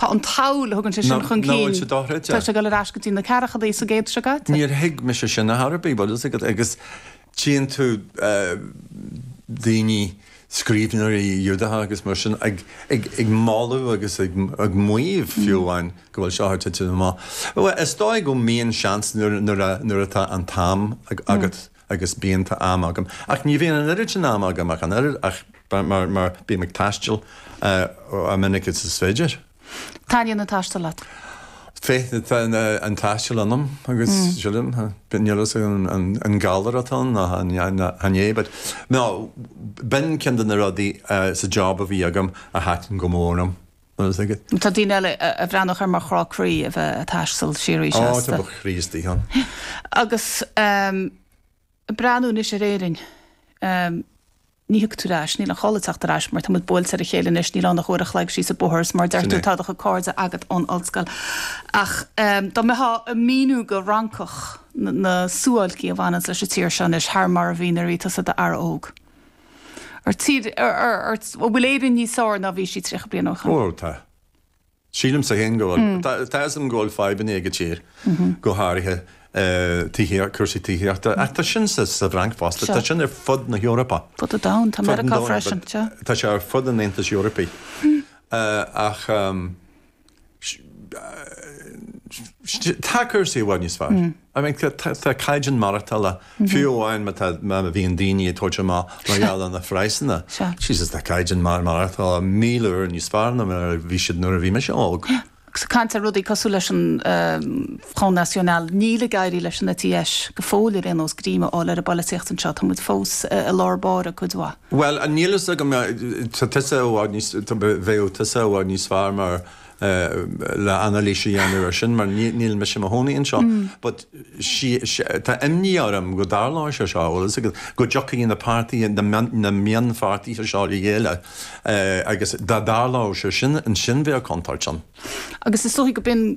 Tá an tsamhail a thugann sé sin chun cinn, tá sé ag dul ar ais go dtí na ceathrachadaí sa gcéad seo caite. Níor thuig mise sin ar chor ar bith, bhfuil a fhios agat, agus tchíonn tú daoine, scríbhneoirí Giúdacha agus mar sin, ag moladh agus ag maíomh fiú amháin go bhfuil seo thar titim amach. Bhuel, is dóigh go mbíonn seans nuair atá an t-am agat. agus bíonn tá am agam ach ní bhíonn an oiread sin ama agam ach an oiread ach mar mar bím ag taisteal chomh minic agus is féidir. Taitníonn an taisteal leat? Féith na tá na an taisteal ionam agus sílim níl fhios agam an an galar atá ann nó an nó cad é but nó b'in ceann de na rudaí sa job a bhí agam a thaitin go mór liom. Is ag. Tá daoine eile a bhreathnódh air mar chrá croí a bheith ag taisteal de shíor arís. Áit a mbeadh Críostaithe ann. Agus ag breathnú anois ar Éirinn, ní thiocfá ar ais, níl aon chall ag teacht ar ais mar tá muid buailte ar a chéile anois, níl ann ach uair a chloig síos an bóthar agus mar a deir tú, tá do chuid cairde agat ón ollscoil. Ach dá mbeifeá ag míniú do Fhrancach na suáilcí a bhaineanns leis an tír seo anois thar mar a mhíneofá iad d'fhear óg, Ar tír, ar, an bhfuil Éirinn níos fearr ná a bhí sí tríocha bliain ó shoin? Bhuel, tá. Sílimse féin go bhfuil. Tá, tá 'fhios a'm go bhfuil fadhbanna ag an tír, go háirithe tithíocht, cúrsaí tithíochta, ach tá sin sa, sa bhFrainc fosta, tá sin ar fud na hEorpa. Ar fud an domhain, tá Meiriceá freisin, sea. Tá sé ar fud an Aontais Eorpaigh, ach. Tá cúrsaí i bhfad níos fearr. I mean tá caighdeán maireachtála, fiú amháin má tá, má bhíonn daoine ag tabhairt amach mar gheall ar na praghsanna, Jesus tá caighdeán maireachtála míle uair níos fearr ná mar a bhí siad nuair a bhí mise óg. Agus ag caint ar rudaí cosúil leis an Front National, níl ag éirí leis an eite dheis go fóill ar aon nós greim a fháil ar an bpolaitíocht anseo, tá muid fós i lár báire cuid mhaith. Bhuel, an níl fhios agam, tá tusa i bhfad níos, tá, bheadh tusa i bhfad níos fearr mar, le anailís a dhéanamh air sin mar ní, níl mise mo chónaí anseo, but sí, tá imní orm go dtarlódh sé seo, bhfuil a fhios agat, go dtiocfadh na páirtithe, na, na mionpháirtithe seo le chéile agus dá dtarlódh sé sin, ansin bheadh contúirt ann. Agus is dóiche go b'in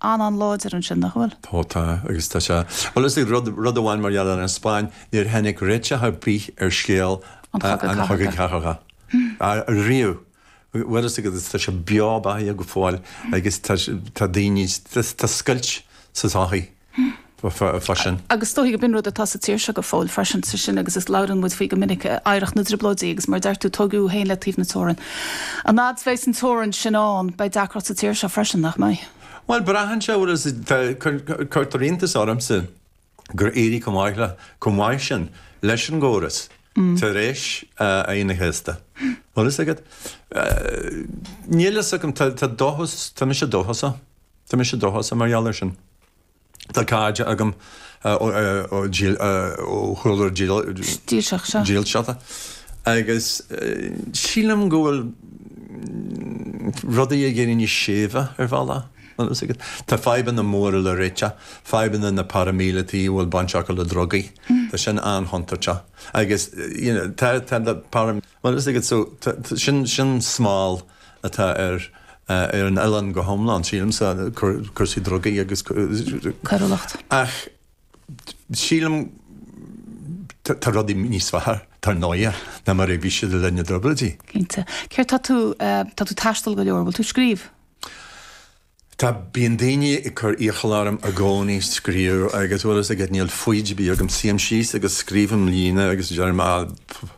an an láidir ansin, nach bhfuil? Tá, tá. Agus tá sé. Bhfuil a fhios agat, rud amháin mar gheall ar an Spáinn, níor tháinig réiteach ar bith ar scéal an Chogaidh Chathartha. Riamh. Bhfuil a fhios agat, agus tá sé beo beathaíoch go fóill agus tá, tá daoine, tá scoilt sa tsochaí. freisin. Agus is dóichí go b'in rud atá sa tír seo go fóill freisin, sé sin agus is labhrann muid faoi go minic, oidhreacht na dTrioblóidí, agus mar a deir tú, tóigeadh thú féin le taobh na teorann. An fhad 's bheas an teorainn sin ann, beidh deacracht sa tír seo freisin, nach mbeidh? Bhuel, braitheann sé bhfuil fhios a'd, cuirtear iontas ormsa gur éirigh chomh maith le, chomh maith sin leis an gcóras tar éis Aoine an Chéasta. Bhfuil fhios agat, níl fhios agam, tá dóchas, tá mise dóchasach, tá mise dóchasach mar gheall ar sin. Tá cairde agam ó chúlra dílseachta agus sílim go bhfuil rudaí ag éirí níos séimhe ar bhealach. Tá fadhbanna móra le réiteach, fadhbanna na bparaimíleataigh a bhfuil baint acu le drugaí, tá sin an-chontúirteach agus tá na paramíleataigh, sin smál. atá ar an oileán go hiomlán, sílimse, cúrsaí drugaí agus coiriúlacht. Ach sílim tá rudaí níos fearr, dar ndóighe, ná mar a bhí siad i linn na dTrioblóidí. Cinnte. Céard tá tú, tá tú ag taisteal go leor, bhfuil tú ag scríobh? Tá, bíonn daoine ag cur iachall orm i gcónaí scríobh agus bhuel, is ag, níl foighid ar bith agam, suím síos agus scríobhaim líne agus deirim ah pff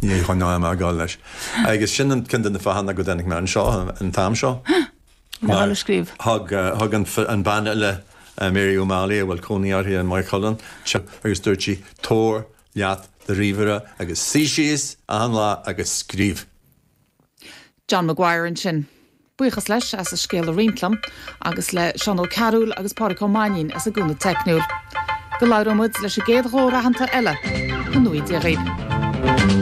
níl aon cheann ag gabháil a ghabháil leis agus sin an, ceann de na fáthanna go dtáinig mé anseo an t-am seo mar thug, thug an bhean eile Mary O'Malley a bhfuil cónaí uirthi i Maigh Chuilinn tip agus dúirt sí tabhair leat do ríomhaire agus suí síos achan lá agus scríobh. John Maguire ansin. Buíochas leis as a scéal a roinnt liom, agus le Seán Ó Cearúil agus Pádraig Ó Mainnín as a gcúnamh teicniúil. Go labhróidh muid leis an gcéad chomhráití eile go n-éirí libh.